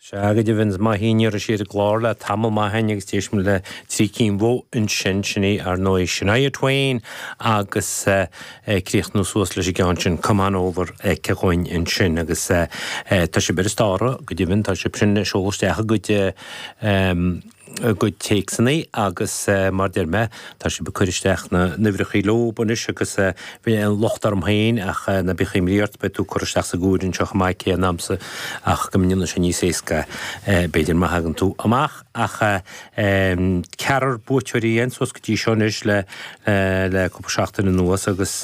Sea, go deimhin, is maith í an iarraidh siar i gclár le tamall maith ann agus d'éist muid le trí cinn mhaith ansin, sin í, ar ndóigh, Shania Twain agus ag críochnú suas leis an gceann sin, Come On Over, aici dhúinn ansin agus tá sibh ar an stártáil, go deimhin, tá sibh sin ag seoladh isteach a gcuid a gcuid téacsanna agus mar deir mé, tá siad ag cur isteach na n-uimhreachaí leob anois agus bhí an locht orm féin ach ná bíodh aon imní ort, beidh tú ag cur isteach sa gcúir anseo chomh maith ag aon am sa ach go ndéanfaidh sé níos éasca b'fhéidir má thagann tú amach ach ceathrar buaiteoirí dhéan suas go dtí seo anois le le cúpla seachtain anuas agus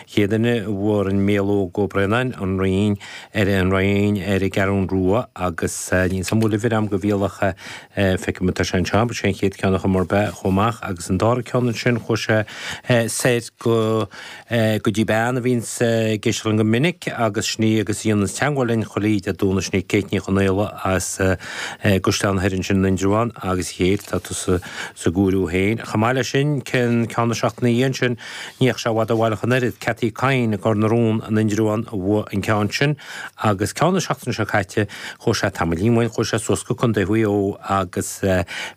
chéad duine a fuair an Méalóg Ó Braonáin, An Rinn, ar an gCeathrún Rua agus níl 'sam bhuail uimhir am go bhíol ach. Feicim atá sé anseo, sé an chéad ceann ar chuma ar bith a chuaigh amach agus an dara ceann ansin chuaigh sé soir go go dtí bean a bhíonn ag éisteacht linn go minic agus sin í agus a dhéananns teagmháil linn oíche Dé Domhnaigh sin í Kate Ní Chonaola as Cois Fharraige sin in Indreabhán agus chéir tá tú sa sa gcúiriú féin. Chomh maith leis sin ceann na seachtaine ina dhiaidh sin ní raibh sé bhfad ó bhaile ach an oiread. Cathy Kyne i gCor na Rún in Indreabhán a bhuaigh an ceann sin. Agus ceann na seachtaine seo caite, chuaigh sé tamaillín uainn, chuaigh sé suas go Contae Mhaigh Eo agus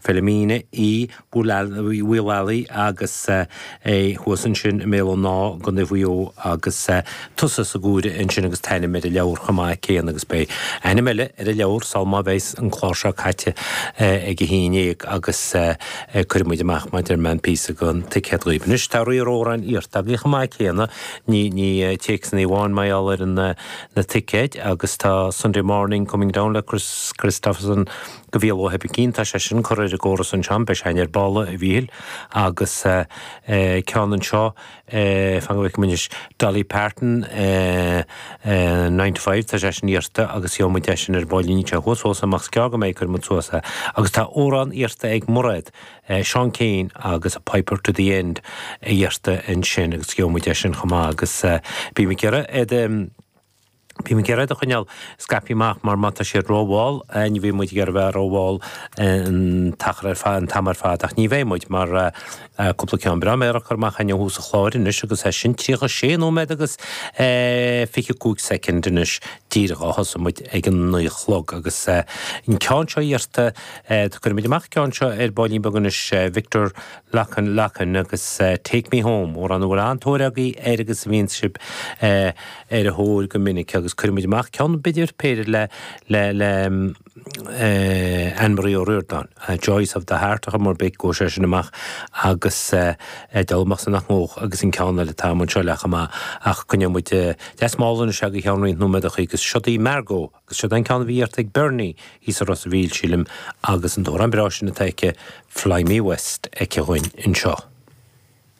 Philomena Uí Mhaolalaigh agus é thuas ansin i mBéal an Ná i gContae Mhaigh Eo agus tusa sa gCuaire ansin agus t-ainm ar an leabhar chomh maith céanna agus beidh ainm eile ar an leabhar sul má bheas an clár seo caite ag a haon ndéag agus cuirfidh muid amach mar a deir mé an píosa go an ticéad dhaoibh. Anois tá lear amhráin iarrtha agaibh chomh maith céanna, Ní ní téacsanna amháin le haghaidh dul ar na ticéid agus tá Sunday Morning Coming Down le Kris Kristofferson go bhfios dom níl, tá sé sin curtha ar an gcóras anseo, an beidh sé sin ar ball agus ceann anseo fan go bhfeicim anois Dolly Parton Nine to Five tá sé sin iarrta agus gheobhaidh muid é sin ar baillín, níl sé thuas fós ach is gearr go mbeidh cuirfidh muid suas é. Agus tá amhrán iarrta ag Mairéad. Seán Keane agus A Piper to the End atá iarrtha ansin agus gheobhaidh muid é sin chomh maith agus bím ag iarraidh iad bím ag iarraidh iad a choinneáil scaipthe amach mar má tá siad rómhall ní bhíonn muid ag iarraidh a bheith rómhall an t-achar ar fad, an t-am ar fad ach ní bheidh muid mar cúpla ceann breá mear curtha amach againn ó thús an chláir anois agus é sin 36 nóiméad agus 25 soicind anois díreach ó thosaigh muid ag a naoi a chlog agus an ceann seo iarrtha Cuirfidh muid amach an ceann seo ar baillín beag anois, Victor Lacan agus Take Me Home, amhrán a bhfuil an-tóir agaibh air agus a bhíonn sibh ar a thóir go minic agus cuirfidh muid amach ceann b'fhéidir péire le le Anne Marie O'Riordan, Joys of the Heart ar chuma ar bith, gheobhaidh sé sin amach agus ag dul amach seans maith dóibh agus an ceann eile atá anseo léi chomh maith ach coinneoidh muid deas mall anois go ceann roinnt nóiméad ó shoin agus seo daoibh Margo! Agus siod é an ceann a bhí iarrta ag Bernie thíos i Ros a' Mhíl, sílim, agus an t-amhrán breá sin atá aici, Fly Me West, aici againn anseo.